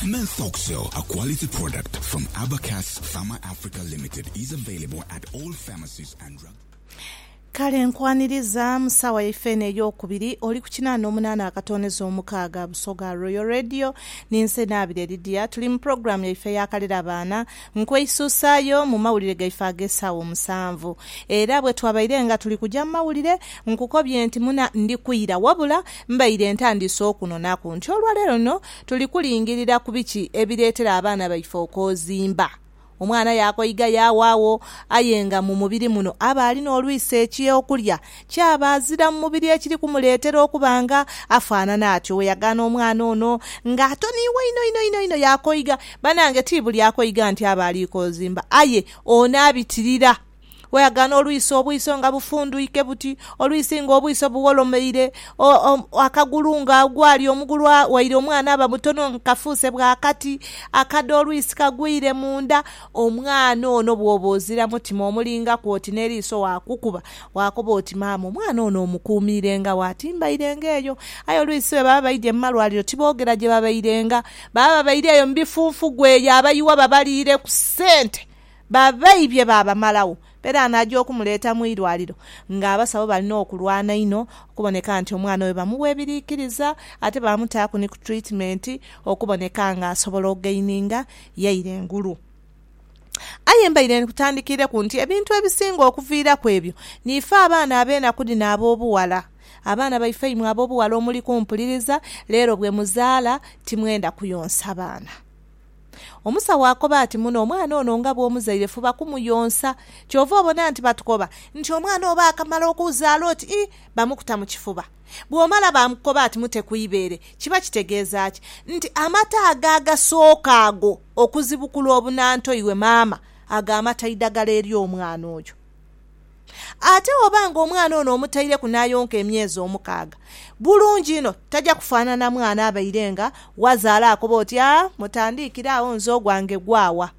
Menfoxcel, a quality product from Abacus Pharma Africa Limited is available at all pharmacies and drug. Kale nkwaniriza mu saawa yaife eno ey'okubiri, oli ku kinaana omunaana akatooneza omukaaga, Busoga Royal Radio, ninze Naabire Lydia, tuli mu pulogulaamu yaife eya Kalera Baana, nkweisuusaayo mu mawulire gaife ag'esaawa omusanvu. Era bwetwabaire nga tuli kuja mu mawulire, nkukobye nti muna ndi kwira, wabula mbaire ntandiise okunhonaku nti olwaleero luno, Tuli kulingirira ku biki ebireetera abaana baife okozimba? Omwana yaakoiga yaawaagho, aye nga mu mubiri muno aba alina olwisa eky'okulya, kyaba azira mu mubiri ekiri kumuleetera okuba nga afaanana atyo. Weyagaana omwana ono nga atoniibwa inho inho inho inho yaakoiga, banange ti buli akoiga nti aba ali kozimba, aye ono abitirira. Weaghana olwiso obwiso nga bufundhwike buti, olwisi nga obwiso buwolomeire, akagulu nga ghali omugulu waire omwana aba mutono nga kafuuse bwa kati, akadho olwisi kagwire munda. Omwana ono bwoba ozira mutima omulingaku oti n'eriiso waakukuba, waakoba oti maama omwana ono omukuumiirenga wa? Timbairenga eyo. Aye olwisi bwe baba baidhye mu malwaliro tiboogera gye babairenga. Baba babaire eyo mu bifunfugu eyo abayiwa babaliire ku sente Babaibye baabamalagho. Peran aja okumuleeta mu irwaliro nga abasawo balina okulwana inho okuboneka nti omwana oyo bamuwa ebiriikiriza ate baamutaaku ni ku treatment okuboneka nga asobola ogaininga yaire engulu. Aye mbaire nkutandikiireku nti ebintu ebisinga okuviiraku ebyo niife abaana ab'enaku dhino ab'obughala. Abaana baife imwe ab'obughala omuli kumpuliriza leero bwe muzaala timwenda kuyonsa baana. Omusawo akoba ati, Muno omwana ono nga bw'omuzaire fuba kumuyonsa. Kyova obona nti batukoba nti omwana oba akamala okuuzaala oti ii, bamukuta mu kifuba. Bw'omala baamukoba ati mute ku ibeere. Kiba kitegeeza ki? Nti amata ago agasooka ago okuzibukula obunantoirwe maama, ago amata idagala eri omwana oyo. Ate oba nga omwana ono omutaireku n'ayonka emyezi omukaaga, bulungi inho taja kufaanana mwana abaire nga wazaala akoba oti, Aa, mutandiikire agho nze ogwange gwawa.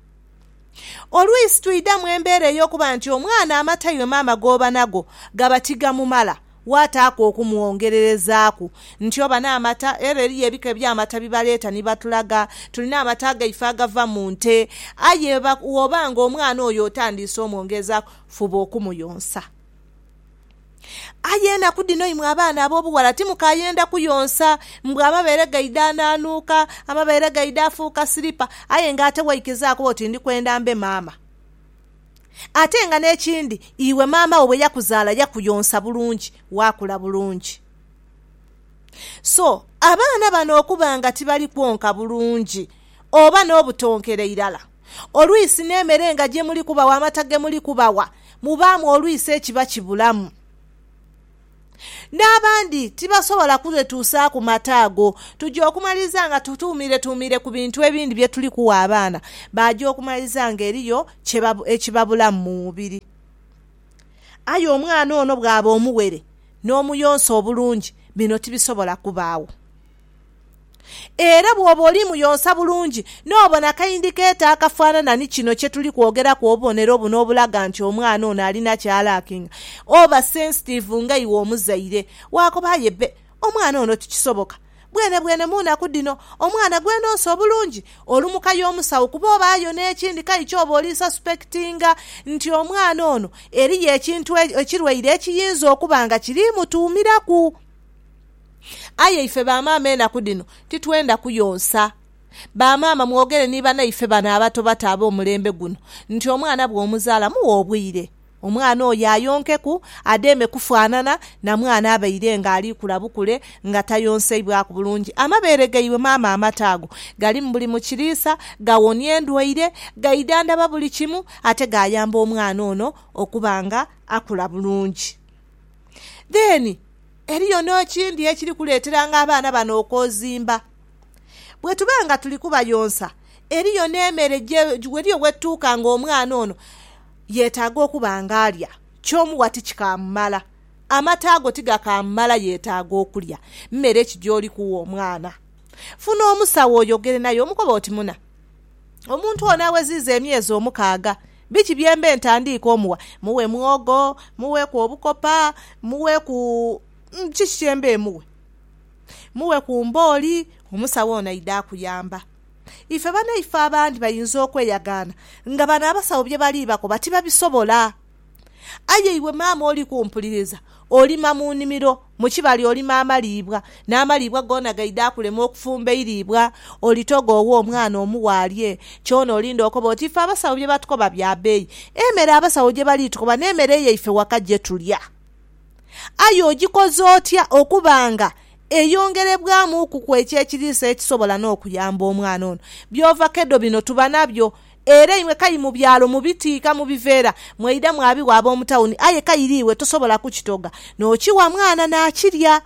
Oluisi twidha mu embeera ey'okuba nti omwana amatairwe maama g'oba nago gaba tigamumala, waataaku okumwongererezaaku nti oba n'amata. Era eriyo ebika eby'amata bye baleeta ni batulaga. Tulina amata gaife agava mu nte. Aye bwoba nga omwana oyo otandiise omwongerezaaku, Fuba okumuyonsa. Aye enaku dhino imwe abaana ab'obughala timukaayenda kuyonsa. Mbu amabeere gaidha anaanuuka, amabeere gaidha afuuka silipa aye nga ate waikizaaku oti ndi kwenda mbe maama. Ate nga n'ekindi iwe maama wo bwe yakuzaala yakuyonsa bulungi, waakula bulungi. So, abaana bano okuba nga tibali kwonka bulungi oba n'obutonkera irala, Olwisi n'emere nga gye muli kubawa amata ge muli kubawa, mubaamu olwisi ekiba kibulamu. N'abandi tibasobola kwetuusaaku mata ago. Tuja okumaliriza nga tutuumiretuumire ku bintu ebindi bye tuli kuwa abaana, baaja okumaliriza ng'eriyo ekibabulamu mu mubiri. Aye omwana ono bw'aba omuwere n'omuyonsa obulungi, bino tibisobola kubaagho. Era bw'oba oli muyonsa bulungi, n'obona akaindi k'etaa akafaanana ni kino kye tuli kwogeraku, obubonero buno obulaga nti omwana ono alina ky'alaakinga, oba sensitive nga iwe omuzaire. Waakoba, Aye bbe, omwana ono tikisoboka. Bwenebwene mu nnaku dhino, omwana gwe nonsa obulungi, olumuka y'omusawo kuba oba ayo n'ekindi kai ky'oba oli suspectinga nti omwana ono eriyo ekintu ekirwaire ekiyinza okuba nga kiri mutuumiraku. Aye ife bamaama enaku dhino titwenda kuyonsa. Bamaama mwogere ni banaife bano abatobato ab'omulembe guno nti omwana bw'omuzaala mughe obwire omwana oyo ayonkeku adheeme kufaanana na mwana abaire nga ali kula bukule nga tayonseibwaku bulungi. Amabeere gaibwe maama amata ago galimu buli mu kiriisa, gawonia endwaire, gaidhandhaba buli kimu ate gaayamba omwana ono okuba nga akula bulungi. Then eriyo n'ekindi ekiri kuleeteranga abaana bano okwozimba. Bwetuba nga tuli kubayonsa eriyo n'emere, eriyo wetutuuka nga omwana ono yetaaga okuba nga alya, kyomuwa ti kikaamumala, amata go ti gakaamumala yetaaga okulya. Mmere ki gy'oli kuwa omwana? Funa omusawo oyogere naye omukobe oti, Muna. Omuntu ono aweziiza emyezi omukaaga, biki bye mbe ntandiika omuwa? Mughe mwogo? Mugheku obukopa? Mugheku kiki kye mbe mughe? Mugheku mbooli? Omusawo ono aidha akuyamba. Ife banaife abandi bayinza okweyagaana nga bano abasawo bye bali bakoba tibabisobola. Aye iwe maama oli kumpuliriza, olima mu nimiro, mu kibali olima amaliibwa, n'amaliibwa goona gaidha akulema okufumba eiriibwa. Olitoga oghe omwana omughe alye, kyona olinda okobe oti, 'Ife abasawo bye batukoba bya bbeeyi. Emere abasawo gye bali tukoba n'emere yaife waka gye tulya. Aye ogikoze otya okuba nga eyongerebwamuukuku eky'ekiriisa ekisobola n'okuyamba omwana ono? By'ova kedo bino tuba nabyo. Era imwe kai mu byalo mubitiika mu biveera, mwaidha mwabigha ab'omu tawuni, aye kaire iwe tosobola kukitoga, n'okigha mwana naakirya.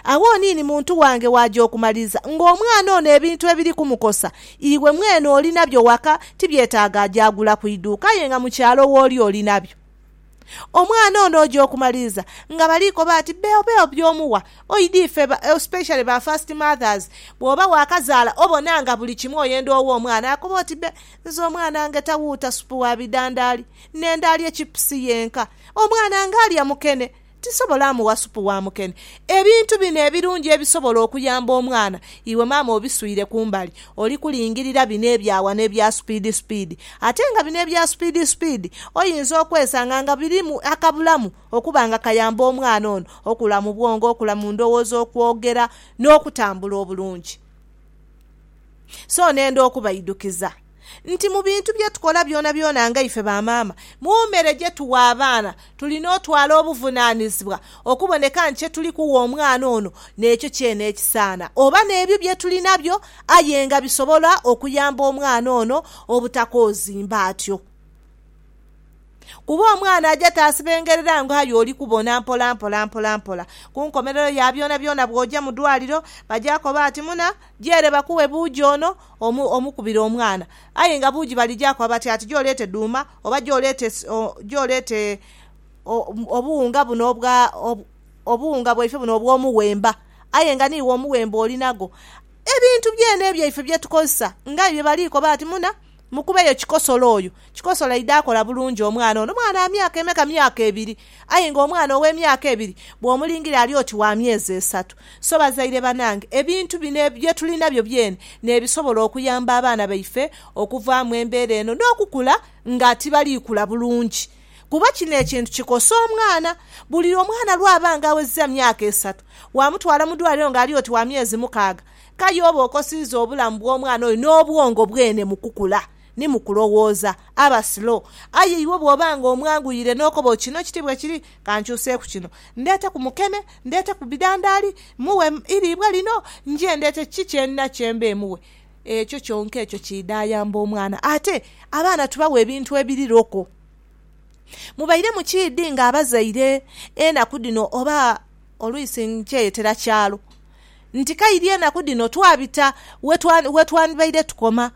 Agho oniini muntu wange waaja okumaliriza ng'omwana ono ebintu ebiri kumukosa, iwe mwene olinabyo waka, tibyetaaga aje agula ku iduuka aye nga mu kyalo wooli olinabyo. Omwana ono oja okumaliriza nga bali koba ati beo beo byomuwa oidha ife especially ba first mothers bwoba wakazaala obona nga buli kimu oyenda owe omwana akoba oti be nze omwana ngeta wuuta supu wa bidandaali nenda alye chipusi yenka omwana nga alya mukene tisobola muwa supu wa mukene ebintu bino ebirungi ebisobola okuyamba omwana iwe maama obiswire kumbali Oli kulingirira bino ebya ghano ebya supiidi supiidi, ate nga bino ebya supiidi supiidi oyinza okwesanga nga birimu akabulamu okuba nga kayamba omwana ono okula mu bwongo, okula mu ndowooza, okwogera n'okutambula obulungi. So nenda okubaidukiza nti mu bintu bye tukola byonabyona nga ife bamaama, mu mere gye tugha abaana Tulina otwala obuvunaanizibwa okuboneka nti kye tuli kuwa omwana ono n'ekyo kyene ekisaana, oba n'ebyo bye tuli nabyo aye nga bisobola okuyamba omwana ono obutakoozimba atyo. Kuba omwana aja taasibengerera nga aye oli kubona mpolampola mpolampola. Ku nkomerero ya byonabyona bw'oja mu dwaliro, baja koba ati muna gyere bakuwe buuji ono omukubire omwana. Aye nga buuji balija koba bati ati gy'oleete dhuuma Oba gy'oleeta obuwunga buno obwa, obuwunga bwaife buno obw'omuwemba, aye nga n'iwe omuwemba oli nagwo. Ebintu byene ebyaife bye tukozesa, ng'aye bye bali koba ati, Muna, mukubeyo kikosolo oyo. Kikosolo aidha akola bulungi omwana ono. Mwana wa myaka emeka? Myaka ebiri. Aye nga omwana ow'emyaka ebiri bw'omulingira ali oti wa myezi esatu. So bazaire banange, ebintu bino bye tuli nabyo byene n'ebisobola okuyamba abaana baife okuva mu embeera eno n'okukula nga tibali kula bulungi kuba kino ekintu kikosa omwana. Buli omwana lw'aba nga awezezza myaka esatu, waamutwala mu dwaliro nga ali oti wa myezi mukaaga, k'aye oba okosiiza obulamu bw'omwana oyo n'obwongo bwene mu kukula. Ni mu kulowooza aba slow. Aye iwe bw'oba nga omwanguyire n'okoba oti kino kiti bwe kiri, ka nkyuseeku kino. Ndeete ku mukene, ndeete ku bidhandaali, mughe eiriibwa lino, nje ndeete ki kye ndina kye mbe mughe. Ekyo kyonka ekyo kiidha ayamba omwana. Ate abaana tubawa ebintu ebiri loko. Mubaire mukiidhi nga abazaire enaku dhino oba olwisi nkyeyetera kyalo nti kairi enaku dhino twabita we twandibaire tukoma.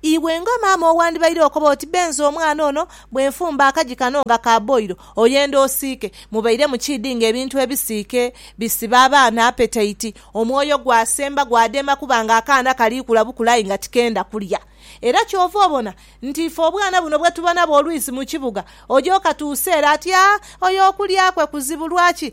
Iwe nga maama owandibaire okoba oti benze omwana ono bwe nfumba akaji kano nga ka boilo oyenda osiike. Mubaire mukiidhi nga ebintu ebisiike bisiba abaana apetaiti, omwoyo gwasemba gwadema kuba nga akaana kaliikula bukula aye nga tikenda kulya. Era kyova obona nti ife obwana buno bwe tuba nabwo oluisi mu kibuga oja okatuusa ere ati, Aa, oyo okulya kwe kuzibu lwaki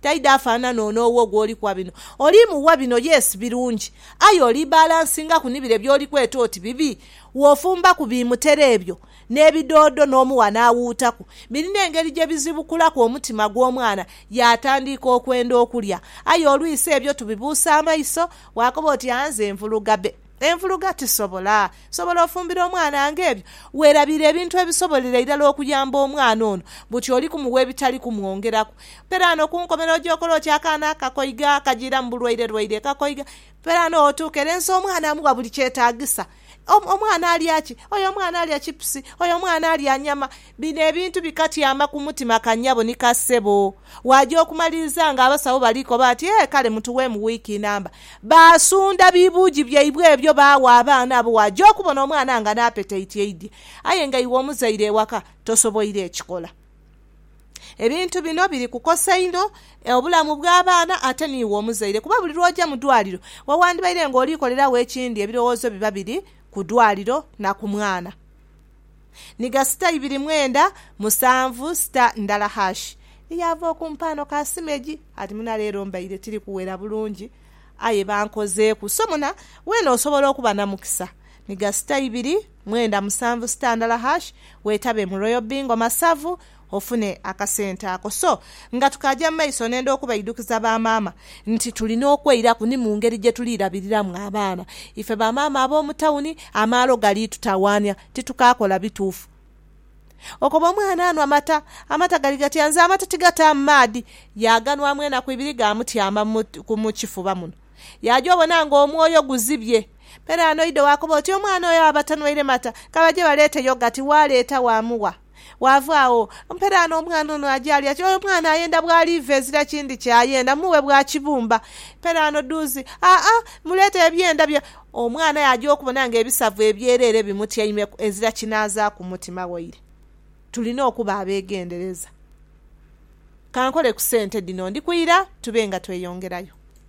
Taidha afanana ono owo gwoli kuwa bino. Oli muwa bino yes birungi aye oli balansingaku ni bire byoli kweta oti bibi. Wofumbaku bi mutera ebyo n'ebidoodo n'omuwa n'awuutaku, birina engeri gye bizibukulaku omutima gw'omwana yaatandiika okwenda okulya. Aye olwisi ebyo tubibuusa amaiso, bw'akoba oti aa nze nvuluga be. Envuluga tisobola. Nsobola ofumbira omwana nga ebyo? Weerabiire ebintu ebisobolera irala okuyamba omwana ono, buti oli kumugha ebitali kumwongeraku. Peraano ku nkomerero oja okola oti akaana akakoiga akajiiramu bulwairelwaire ekakoiga. Peraano wotuuka ere nsi omwana amugha buli kyetaagisa. Omwana alya ki? Oyo omwana alya chipusi, oyo omwana alya nyama. Bino ebintu bikatyama ku mutima ka nyabo ni ka sebo. Waaja okumaliriza nga abasawo bali koba ati, Ee, kale mutuweemu wiiki namba. Baasunda bibuugi byaibwe ebyo baagha abaana abo waaja okubona omwana nga n'apetaiti eidhye. Aye nga iwe omuzaire ewaka tosoboire ekikola. Ebintu bino biri kukosa inho obulamu bw'abaana ate n'iwe omuzaire kuba buli lw'oja mu dwaliro we wandibaire ng'oli koleragho ekindi ebirowoozo biba biri ku dwaliro na ku mwana. ni gha sita ibiri mwenda musanvu sita ndala hashi. Eyaava okumpaano ka simu egi ati muna leero mbaire tiri kuwera bulungi aye bankozeeku so muna weena osobola okuba namukisa ni gha sita ibiri mwenda musanvu sita ndala hashi wetabe mu Royal Bingo Masavu ofune akasente ako. So nga tukaaja mu maiso nenda okubaidukiza ba maama nti tulina okweiraku ni mu ngeri gye tuli labiriramu abaana. Ife ba maama ab'omu tawuni amaalo gali tutawaania, titukaakola bituufu. Okoba omwana anwa mata, amata gali gatya? Nze amata tigataamu maadhi. Yaaganwamu enaku ibiri gaamutyama mu kifuba muno. Yaaja obona ng'omwoyo guzibye. Peraano oidho waakoba oti, Omwana oyo aba tanwaire mata. Ka baje baleete yogati. Waaleeta waamuwa. Waava agho, mpe dhaano omwana ono aje alye. Kati oyo omwana ayenda bw'aliiva ezira kindi ky'ayenda, mughe bwa kibumba. Mpe dhaano dhuuzi. Aa, muleete ebyenda bye. Omwana yaaja okubona ng'ebisavu ebyereere bimutyaimeku, ezira kinaazaaku mutima waire. Tulina okuba abeegendereza. Ka nkole ku sente dhino, ndikuira tube nga tweyongerayo.